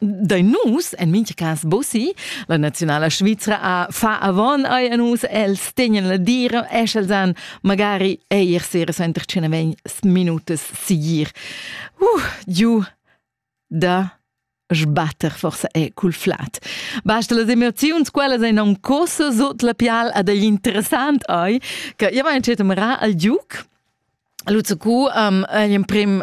da nus en mincha cas bossi la naziunala svizra a fa avon ai a nus els tegnen la dira esch els an magari eir sera senter cena vegn minutas sigir uh giu da sbatter forse è cul flat. Basta las emoziuns, quellas ein non cosa sot la pial ad agli interessant ai, che io mein cet mra al giuc. Luzzo cu um, ein prim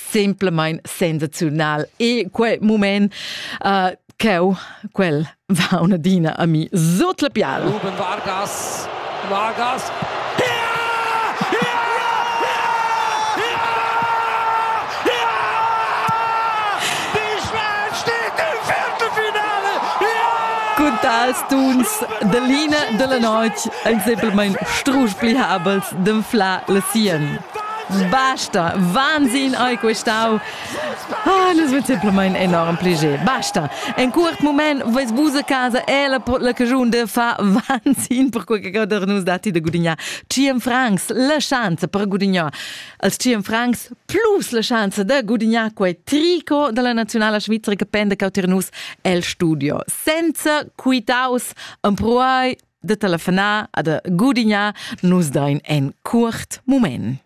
simplamain sensaziunal. E quel moment uh, cheu quel va un'adina a mi sot la piala. Ruben Vargas, Vargas, tals tuns de Line della noc ensemplmein strusch pli habels d'enflar la sien. Basta, Wahnsinn ei questau. Ah, nus vein simplamain enorm pleiger. Basta. En curt moment ves vus a casa e la, la cagiun de fa Wahnsinn per quei che gauder nus datti de gudignar 100 francs la chance per gudignar als 100 francs plus la chance de gudignar quei tricot della nazionala svizzera che pende cauter nus el studio senza quitaus empruai de telefonar ad gudignar nus dain en cuort moment.